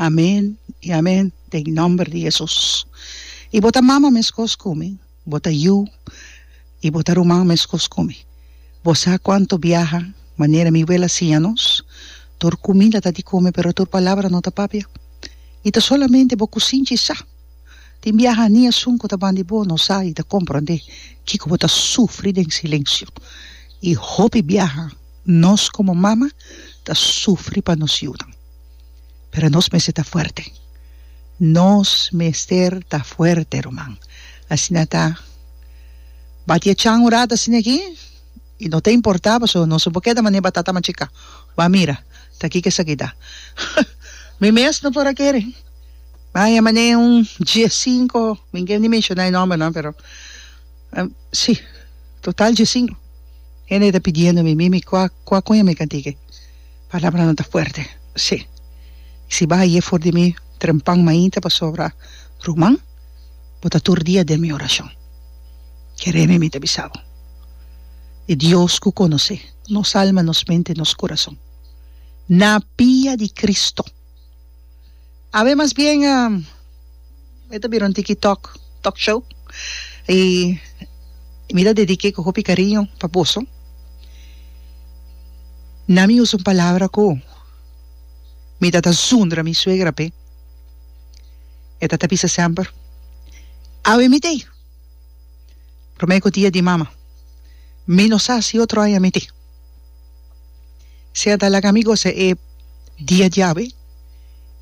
Amen i amen den nomber di Hesus i bo ta mama meskos ku mi bo ta yu i bo ta ruman meskos ku mi bo sa kuantu biaha manera mi wela siña nos tur kumida ta di kume pero tur palabra no ta papia i ta solamente bo ku sinchi sa tin biaha ani esun ku ta ban di bo no sa i ta komprondé kiko bo ta sufri den silensio i hopi biaha Nos komo mama ta sufri pa nos yunan, pero nos mester ta fuerte. Nos mester ta fuerte, ruman. Asina ta. Ba di e chan un rato asina aki, i no ta importá pasobra nos no por keda manera batata machiká. Ba mira ta kiko esaki ta. Mi mes no por a kere. Bai e manera un dies sinku, mi no ke ni menshoná e nòmber nan, pero. Si, total dje sinku hende e ta pidiendo mi, mimi kua kua kuña mi ka tiki, palabranan ta fuerte, si, si bo a ye for di mi trempan mainta pasobra ruman bo ta tur dia den mi orashon, kere mi mi ta bisa bo, e Dios ku konosé nos alma, nos mente, nos kurason, na pia di Kristu. Awe mas bien e ta bira un tiki talk talk show y mi ta dedique cu hopi cariño pa boso na mi usa un palabra cu mi ta ta zundra mi suegra pe e ta ta bisa sember awe mi tey prome cu dia di mama mi no sa si otro aña mi tey Si a dalaga mi gosa e dia djawe,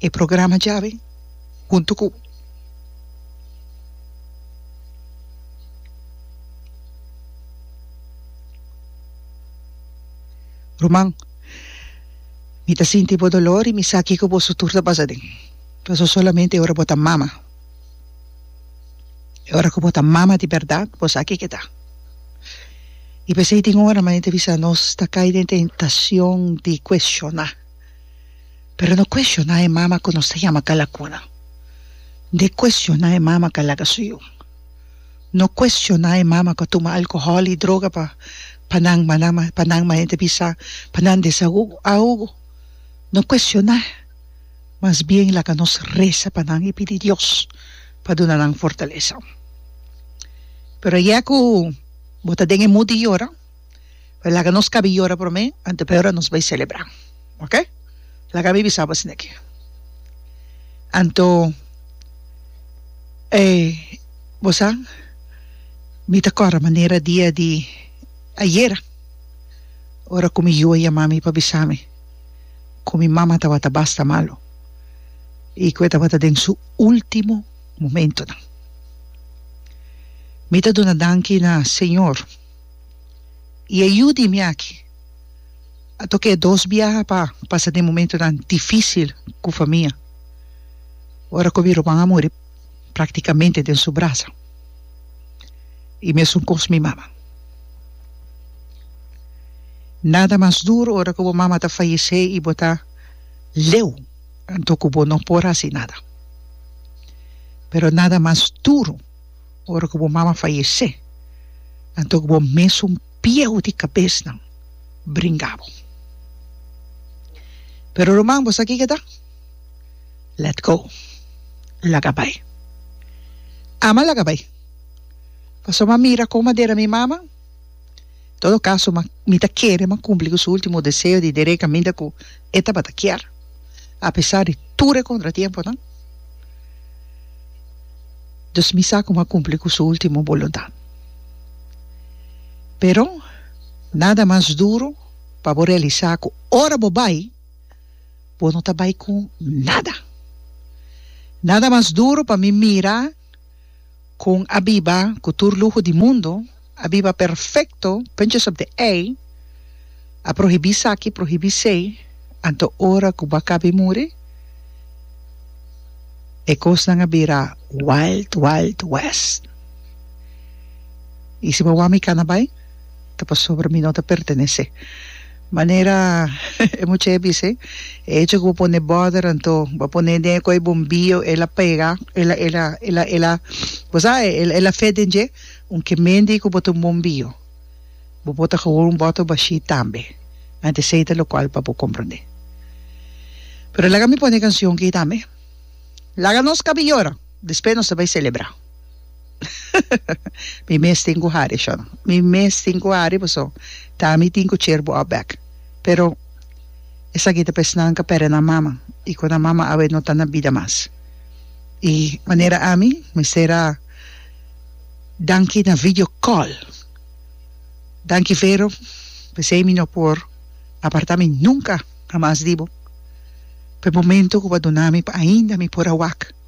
e programa djawe huntu ku ruman. Mi ta sinti bo dolor i mi sa kiko bo sutur ta pasa den. Paso solamente ora bo ta mama. E ora ku bo ta mama di bèrdat, bo sa kiko ta. I p'esei tin ora, manera i ta bisa, nos ta kai den tentasion di kuestioná. Pero no kuestioná e mama ku nos ta yama kalakuna. No kuestioná e mama ku a laga su yu. No kuestioná e mama ku a tuma alkohòl i droga pa pa nan pa nan manera i ta bisa pa nan desahogo, ahogo. No kuestioná. mas bien laga nos resa pa nan i pidi Dios pa duna nan fortalesa. Pero ayá ku bo ta den e mood di yora, pues laga nos kabi yora promé anto p'e ora nos bai selebrá, oke? Laga mi bisa bo asina aki. Anto e bo sa mi ta kòrda manera dia di ayera ora ku mi yu a yama mi pa bisa mi. ku mi mama tabata basta malu i ku e tabata den su último momentunan. Mi ta duna danki na Señor i e yu di mi aki a toka e dos biaha pa pasa den momentunan difísil ku famia ora ku mi ruman a muri. Practicamente den su brasa. Y mesun cos mi mama. Nada mas duro ora cu bo mama ta fayece y bo ta leu anto cu bo no por haci nada. Pero nada mas duro ora cu bo mama fayece anto cu bo mesun pieu di cabesnan bringa bo. Pero Roman, bo sa kico ta? Let go. Laga bai. Ama laga bai. Paso m'a mira con madera mi mama. Todo caso m'a mi ta kere m'a cumpli cu su ultimo deseo di dere caminda cu e tabata kier, a pesar di tur e contratiemponan. Dus mi sa cu m'a cumpli cu su ultimo boluntad. Pero nada mas duro pa bo realisa cu ora bo bai, bo no ta bai ku nada. Nada mas duru pa mi mira kon a biba ku tur luho di mundo, a biba perfekto, puntjes op de ei, a prohibí esaki, prohibí sei, anto ora ku bo a kabe muri, e kosnan a bira Wild Wild West. I si bo a wak mi kanabai? ta pasobra mi no ta pertenece. Manera e mucha a bisa, e hecho cu bo pone border anto bo pone den e coy bombio el a pega, el a, el a, el a, el a, bo sa, el a fe den dje, aunque mendi cu bo ta un bombio, bo por ta hour un bottle bashi tambe, anto esey ta locual pa bo comprende. Pero laga mi pone e cancion aki tambe, laga nos cabi yora, despues nos ta bay celebra. Mi mes tin cu hari, Sean. Mi mes tin cu hari, pasobra ta mi tin cu cer bo al bek. Pero esaki ta pa esnan ca perde nan mama, y cu nan mama awe no ta na bida mas. Y manera ami mester a danki na video call. Danki Vero, pesey mi no por aparta mi nunca hamas di bo, pa e momento cu bo a duna mi, pa ainda mi por a wak.